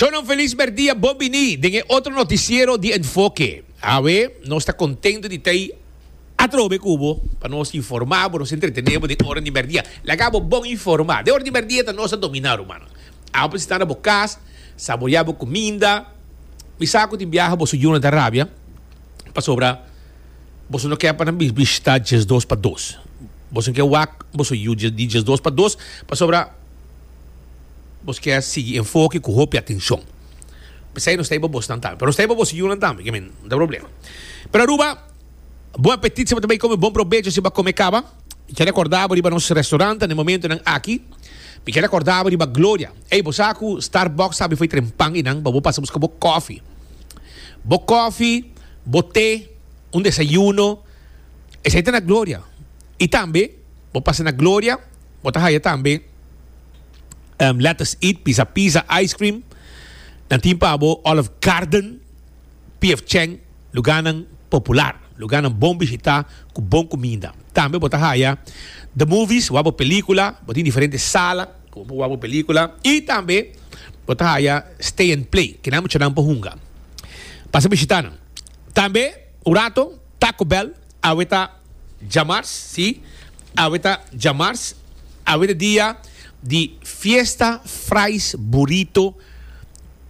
Shon un feliz merdia bon bini den e otro noticiero di Enfoke. Awe nos ta contento di ta atrobe cu bo pa nos informa bo, nos entretene bo den ora di merdia. Laga bo bon informa. Den ora di merdia ta nos ta domina rumana. Awe pues sta na bo cas, saborea bo cuminda. Mi sa cu tin biaha boso yu no ta rabia pasobra boso no ke pa nan bishita diesdos pa dos. Boso ke wak boso yu di diesdos pa dos pasobra. Bos ke a sigui enfoke ku hopi atenshon. P'esei nos ta hiba bosnan tambe. Pero nos ta hiba bo siñunan tambe, ke mi no ta problema. Pero Aruba, bon apetit si bo ta bai kome, bon probecho si bo a kome kaba. Mi ke rekorda bo riba nos restaurant den e momentunan aki. Mi ke rekorda bo riba Gloria. Ey, bo sa ku Starbucks ta befo e tren pan i nan pa bo pasa buska bo kòfi. Bo kòfi, bo te, un desayuno, esei ta na Gloria. I tambe bo pasa na Gloria Bo ta haya tambe um, Lettuce Eat, Pisa Pisa Ice Cream. Nan tin pa bo Olive Garden, PF Chang, lugarnan popular, lugarnan bon bishitá ku bon kuminda. Tambe bo ta haya The Movies, wak bo pelíkula, bo tin diferente sala ku bo por wak bo pelíkula. I tambe bo ta haya Stay and Play, ke nan muchanan por hunga. Pasa bishitá nan. Tambe un rato Taco Bell, awe ta. Djamars, sí, awe ta djamars, awe ta dia di fiesta fries burrito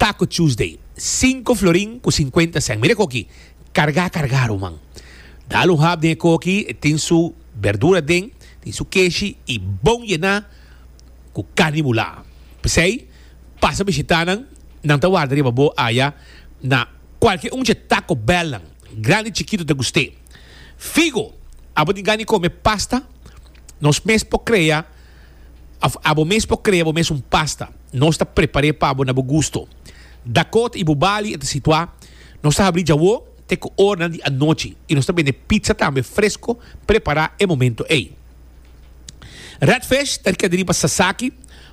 Taco Tuesday, sinku florin ku sinkuenta sèn. Mira e koki, kargá kargá ruman. Dal un hap den e koki, e tin su berdura den, tin su keshi i bon yená ku karni bulá. P'esei, pasa bishitá nan, nan ta warda riba bo aya na kualke un dje Taco Bellnan, grandi chikitu ta gust'é. Figo, abo di gana di come pasta? Nos mes por crea of abo mes por crea bo mes un pasta. Nos ta prepare pa bo na bo gusto. Dakota y Bubali e ta situa. Nos ta habri djawo te cu oranan di anochi y nos ta bende pizza tambe fresco prepara e momento ey. Redfish ta rica di riba Sasaki,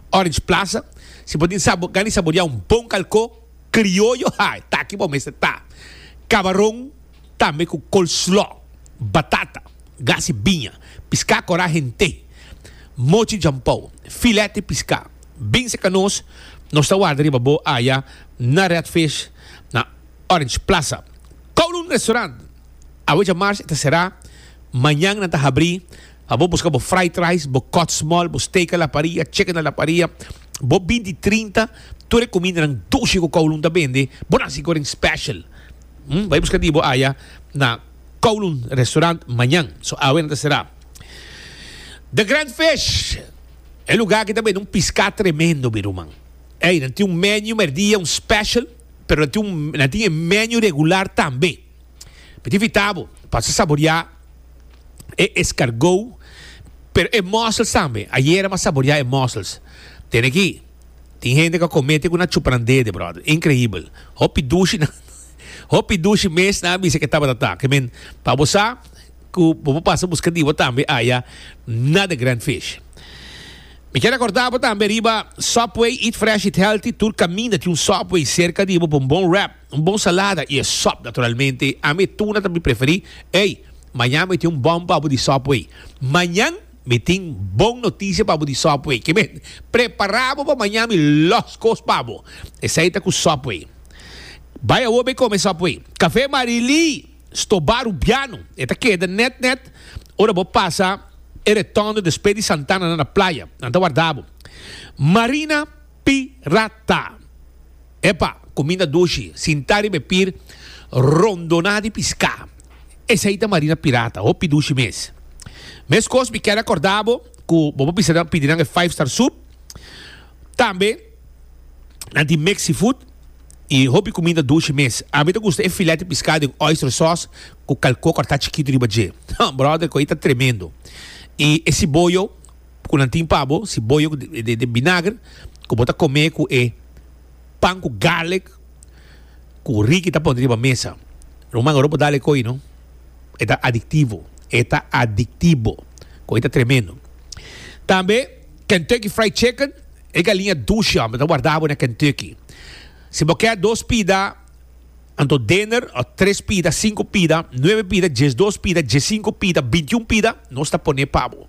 Orange Plaza. Si bo tin sa gana di saboria un bon calco crioyo, ha! Taki bo mes ta ta. Cabaron. Tambe cu coleslaw, batata, gasi biña, piscá corá hent'é, mochi jampou, filet di piscá. Bin seca nos, nos ta warda riba bo aya na Redfish na Orange Plaza. Kowloon Restaurant, awe dja March e ta cerá, mañan nan ta habrí pa bo busca bo fried rice, bo kòtsmòl, bo steak a la parrilla, chicken a la parrilla, bo bindi trinta, tur e cumindanan dushi cu Kowloon ta bende, bo na sico den special. Hm, bai buska di bo aya na Kowloon Restaurant mañan. So awe nan ta será. The Grand Fish, e lugá aki ta bende un piská tremendo, mi ruman. Ey, nan tin un menu merdia, un special, pero nan tin un, nan tin e menu regular tambe. Mi ta invitá bo pasa saboriá e escargou, pero e mussels tambe. Ayera mi a saboriá e mussels. Tene ki Tin hende cu a comete cu na chupa nan dede, brother. Increibel. Hopi dushinan, hopi dushi mes nan a bisa cu e tabata taki. Men, pa bo sa cu bo por pasa busca di bo tambe aya na The Grand Fish. Mi kier recorda bo tambe riba Subway, eat fresh, eat healthy. Tur caminda tin un Subway cerca di bo pa un bon wrap, un bon salada y e sop naturalmente. Ami e tuna ta mi preferi. Ey, mañan mi tin un bom pa bo di Subway. Mañan! Mi tin bon noticia pa bo di Subway. Ke men, prepara bo pa maña mi los cos pa bo. Esai ta cu Subway. Bai awor bay come Subway. Cafe Marie-Lee sto bar Rubiano. E ta keda net net ora bo pasa e retondo despe di Santana na na playa. Nan ta warda bo. Marina Pirata. Epa, kuminda dushi, sintá riba e pir, rondoná di piská. Esei ta marina pirata, hopi dushi mes. Meskos mi kere akordá bo ku bo por bisa nan pidi nan e Five Star Soup, tambe nan tin Mexifood i hopi kuminda dushi mes. Ami ta gusta e filèt di piská den oyster sòs ku kalkó kòrtá chikitu riba dje. Hum, bròder, ku ei ta tremendo! I e siboyo? ku nan tin pa bo, si boyo den binager ku bo ta kome ku e pan ku garlic ku Ricky ta pone riba mesa. Ruman, ora bo dal e koi no, e ta adiktivo, e ta adiktibo, koi ta tremendo. Tambe Kentucky Fried Chicken, e galiña dushi, hombre, ta wardabo na Kentucky. Si bo ke dos pida. Anto dener, o tres pida, sinku pida, nuebe pida, diesdos pida, diesinku pida, bintiun pida, nos ta pone pa bo.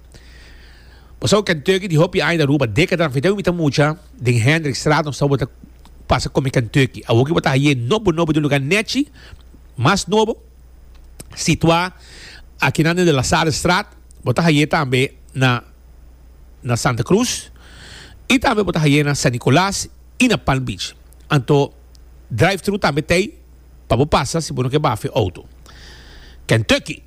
Bo sa cu Kentucky di hopi aña ta Aruba, décadanan federu mi ta mucha, den Hendrikstraat nos ta bo ta pasa come Kentucky. Awor cu bo ta haye nobo nobo den lugar nechi mas nobo, situa akinan den de La Salle Straat, bo ta haye tambe na na Santa Cruz y tambe bo ta haye na San Nicolas y na Palm Beach. Anto. drive-thru tambe t'ei pa bo pasa si bo no ke bafe e outo. Kentucky.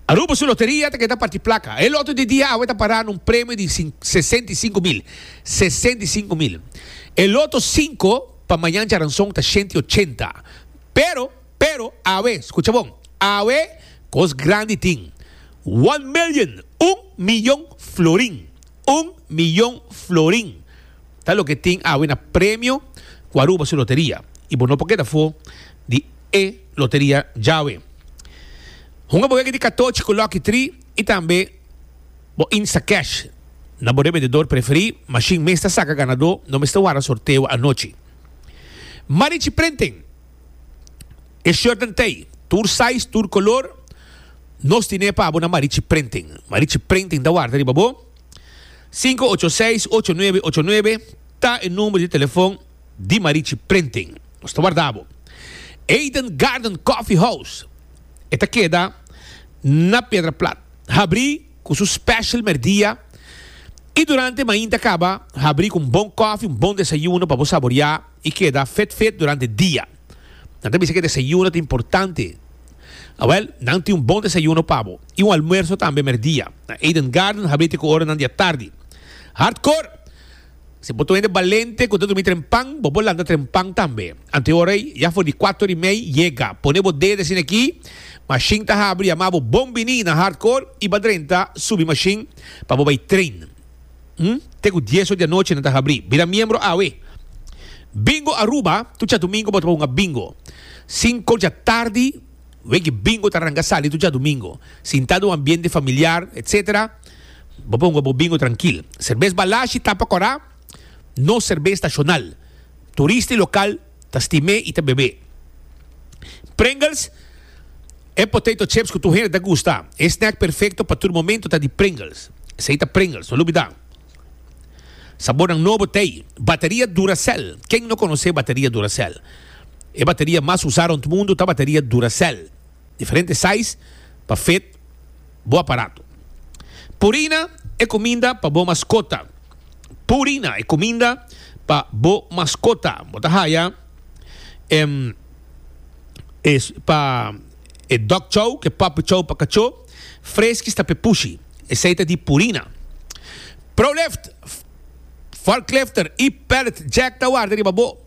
Aruba su loteria ta keda parti plaka. E loto di dia awe ta pará na un premio di sesenta i sinku mil. Sesenta i sinku mil. E loto sinko pa mañan djaranson ta shenta i ochenta. Pero, pero, awe, skucha bon, awe kos grandi tin. One million, un miyon florin. Un miyon florin ta loke tin awe na premio ku Aruba su loteria i bo no por keda for di e loteria djawe. Hunga bo wega di katochi ku Lucky Tri i tambe bo Instacash na bo rebendedor preferí, mashin mes ta saka ganadó, no mester wara sorteo anochi. Marichi Printing. E shirtnan t'ei tur size, tur color. Nos tin'e pa bo na Marichi Printing. Marichi Printing ta warda riba bo. Sinku ocho seis, ocho nuebe, ocho nuebe ta e number di telefon di Marichi Printing. Nos ta warda bo. Eden Garden Coffee House e ta keda na Pedra Plat. Habri cu su special merdia y durante mainta caba habri cu un bon coffee, un bon desayuno pa bo saboria. I keda fit fit durante dia. Nan ta bisa ku e desayuno ta importante. Awel, nan tin un bon desayuno pa bo i un almuerso tambe merdia. Na Eden Garden habl'é ku oranan di atardi. Hardkor! Si bo ta un hende balente ku ta durmi trempan, bo por lanta trempan tambe. Anto e ora ei, ya for di kuater i mei, yega. Pone bo dede asina aki, mashin ta habri, yama bo Bon Bini na Hardkor i ba drenta subi mashin pa bo bai train. te ku dies or di anochi nan ta habri. Bira miembro awe. Bingo Aruba, Tur djadumingu bo ta hunga bingo. Sinku dja tardi wiki bingo ta ranga sali tur djadumingu. Sinta den un ambiente familiar etc. Bo por hunga bo bingo trankil. Serbes Balashi, Tapa Kora, no serbes stashonal. Turista i lokal. ta stimé i ta bebé. Pringles, E potato chips ku tur hende ta gusta. E snack perfekto pa tur momentu ta di Pringles. Esei ta Pringles, no lo bida. Sabornan nobo ta ei, Bateria Duracell, Ken no konosé bateria Duracell? E bateria mas usá rònt mundu ta bateria Duracell. Diferente size pa fit. bo aparato. Purina e kuminda pa bo maskota. Purina e kuminda pa bo maskota. Bo ta haya em e pa e dog chow ku e puppy chow pa kachó freski sta p'e pushi. Esei ta di purina. Prolift, forklifter i pallet jack ta warda riba bo.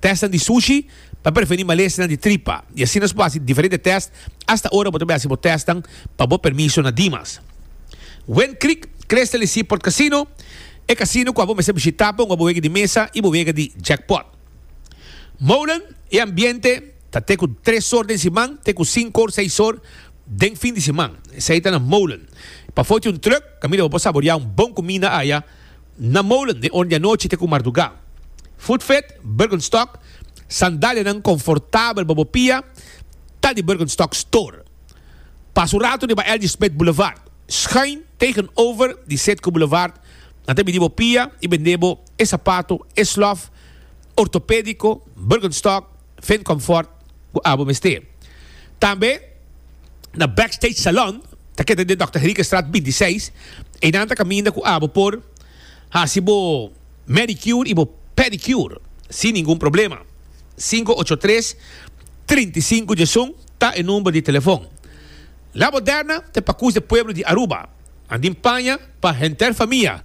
Testnan di sushi ta preveni malesnan di tripa i asina nos por hasi diferente test asta ora bo ta bin hasi bo testnan pa bo permiso na Dimas. Wind Creek Crystal di Seaport Casino, e casino kua bo mester bishita pa un oboega di mesa i boega di jackpot. Molen, e ambiente ta te ku tres or den siman te ku sinku or seis or den fin di siman. Esei ta na Molen. Pafó tin un truck kaminda bo por saborea un bon kuminda aya. Na molen den or di anochi te ku mardugá. Voetvet, Birkenstock, Sandalianan konfortabel pa bo pia ta di Birkenstock Store. Pas un ratu riba L.G. Smith Boulevard, schuin tegenover di Setco Boulevard, nan ta bini bo pia i bendé bo e sapato, e slof, ortopédiko, Birkenstock, Vent Comfort, ku abo mester. Tambe na Backstage Salon, ta keda den Dòkter Henriquestraat binti seis, einan ta kaminda ku abo por hasi bo manicure i bo pedicure sin ningun problema. Sinku ocho tres, trinta i sinku djesun ta e number di telefon. La Moderna ta e pakus di pueblo di Aruba. Andin paña pa henter famia.